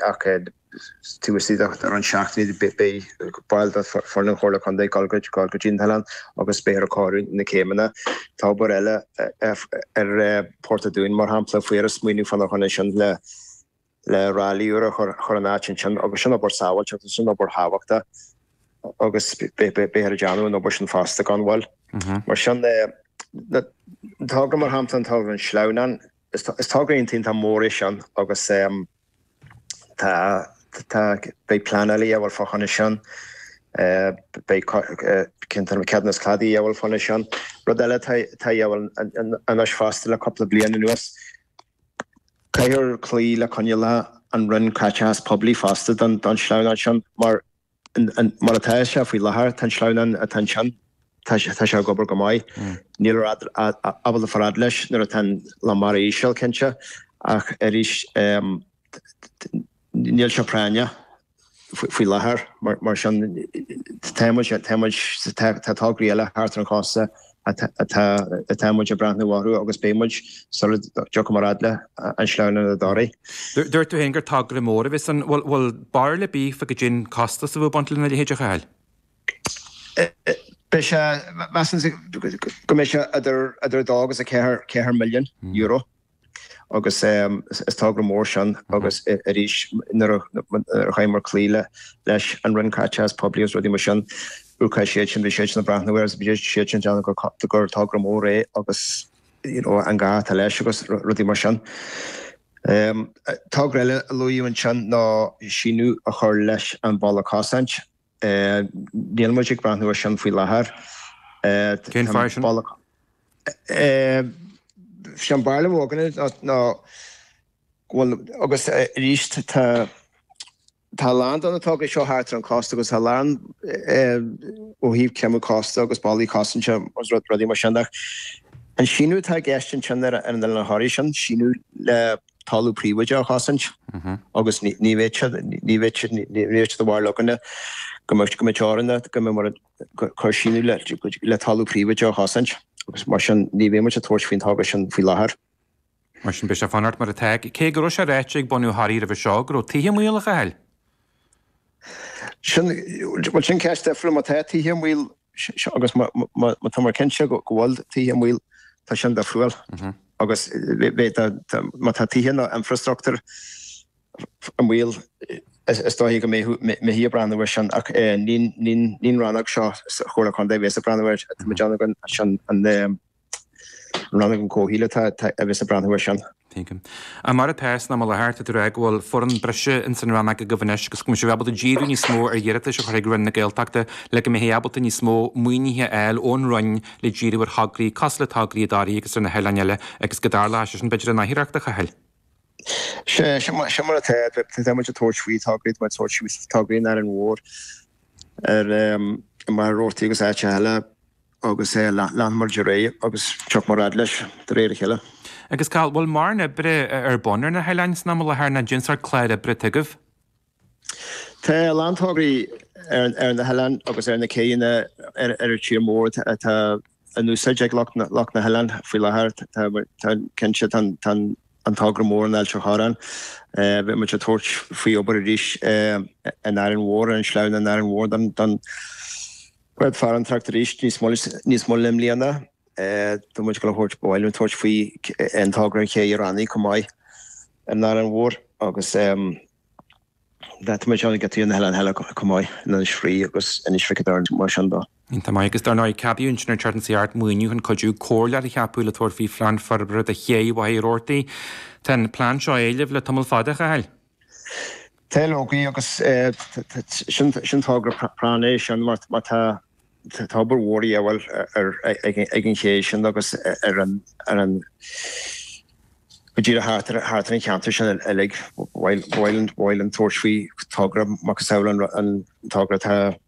Ach taobh istigh den tseachtain beidh baill de foireann an Chomhairle Contae ag dul go dtí an t-oileán agus beifear ag cóiriú na céimeanna. Tá obair eile ar Port an Dúin mar shampla bhíthear ag smaoineamh fána choinne sin le le ráille úr a chur chur an áit ansin agus sin obair sábháilteachta sin obair thábhachtach agus beifear ag déanamh an obair sin fosta gan mhoill mar sin de. Tóg mar shampla an togra an sleamhnán Is togra iontach mór é sin agus beidh pleanáil a dhíobháil fá choinne sin, beidh ceadúnas cladaigh a dhíobháil fá choinne sin. Rud eile atá a dhíobháil anois fosta le cúpla bliain anuas, caithfear cloí le coinníollacha an Roinn Caiteachais Poiblí fosta don tsleamhnán sin mar, Mar atá sé faoi láthair, tá an sleamhnán atá ansin, tá sé ag obair go maith. Níltear ábalta fáil fhad leis nuair atá an lán mara íseal, cinnte, ach arís níl sé práinneach faoi láthair. Mar sin, tá muid, tá tograí eile thart ar an chósta Tá muid ag breathnú orthu agus beidh muid sula dtiocfaidh muid fhad le an sleamhnán i dToraí. Dúirt tú féin gur togra mór a bheas ann. Bhfuil barúil ar bith agaibh cén costas a bheadh ag baint lena leithéid a Chathail? Beidh sé, measaimse go mbeidh sé idir €2 agus €4 milliún. agus is togra mór sin agus arís nuair a chaithfidh muid cloí leis an Roinn Caiteachais Poiblí agus rudaí mar sin, rachaidh siad sin, beidh siad sin ag breathnú air agus beidh siad sin ag déanamh gur togra mór é agus you know an gá atá leis agus rudaí mar sin. Togra eile a luadh ansin ná síneadh a chur leis an bhalla cosaint. Níl muid ag breathnú ar sin faoi láthair. Cén fáth sin? Sin an bharúil a bheadh againn ná go bhfuil, agus arís tá a lán de na tograí seo thart ar an cósta agus tá a lán ó thaobh creimeadh cósta agus ballaí cosanta agus rudaí mar sin ach an síneadh atá i gceist ansin ar an Oileán Thoraí, sin síneadh le. talamh príobháideach a chosaint agus ní bheidh siad, ní bheidh siad, ní bheidh siad barúil againn ná, go mbeidh, go mbeidh teoranna, go mbeidh mar, ag cur síneadh le, le talamh príobháideach a chosaint agus mar sin ní bheidh muid ag tabhairt faoin togra sin faoi láthair. Mar sin beidh sé ag fanacht mar atá, cé go raibh sé ráite ag bunadh Thoraí roimhe seo go raibh tithe i mbaol a Chathail. Sin, bhuel sin ceist difriúil, má tá tithe i mbaol seo agus má tá muid cinnte go bhfuil tithe i mbaol, tá sin difriúil. Agus má tá tithe nó infreastruchtúr i mbaol, is dóiche go mbeidh muid ag breathnú air sin ach ní an rannóg seo sa Chomhairle Contae a bheas ag breathnú air. Tá muid ann againn, sin an An rannóg comhshaoil atá a bheas ag breathnú air sin. Tuigim. Ag mar a pearsa ná mo leathart a d'fhreagair go bhfuil foireann breise ins an rannóg agaibh anois agus go mbeidh sibh ábalta díriú níos mó ar iarratais a chur chuig Roinn na Gaeltachta le go mbeidh ábalta níos mó maoinithe a fháil ón Roinn le díriú ar thograí, cosúil le tograí i dToraigh agus ar na hoileáin eile agus go dar leis, sin b'fhéidir an oidhreacht a Chathail. Sin mar atá, tá muid ag tabhairt faoi thograí, tá muid ag tabhairt faoi thograí in Árainn Mhór, ar Mhachaire Rabhartaigh agus áiteacha eile. agus leanfaidh muid ar aghaidh agus tiocfaidh muid fhad leis de réir a chéile. Agus an bhfuil mórán oibre ar bun ar na hoileáin san am i láthair, nó cad é an sórt clár oibre atá agaibh. Tá a lán tograí ar na hoileáin agus ar na céidheanna ar an tír mór atá in úsáid ag lucht na hoileáin faoi láthair. Tá cinnte tá an togra mór in Ailt an Chorráin, beidh muid ag tabhairt faoi obair arís in Árainn Mhór, ar an sleamhnán in Árainn Mhór don. Cuirfear an tAcht arís níos moille i mbliana. Tá muid ag gabháil a thabhairt, ba mhaith linn tabhairt faoi an togra ag Cé an Rannaigh chomh maith ar an Árainn Mhór agus tá muid ann ag giotaí ar na hoileáin eile chomh maith, in Inis Fraoigh agus Inis Mhic a' Doirn mar sin de. Tá maith agus, dár ndóigh, ceadaíodh ansin ar Charity CR maoiniú chun cuidiú comhairleach a cheapadh le tabhairt faoi phlean forbartha do Ché Mhachaire Rabhartaigh. Tá an plean seo á éileamh le tamall fada, a Chathail. Tá leoga agus sin togra práinneach é sin mar tá obair mhór de dhíobháil ag an ché sin agus ar an go díreach thart ar an cheantar sin uilig. Ba mhaith linn tabhairt faoi togra macasamhail an togra atá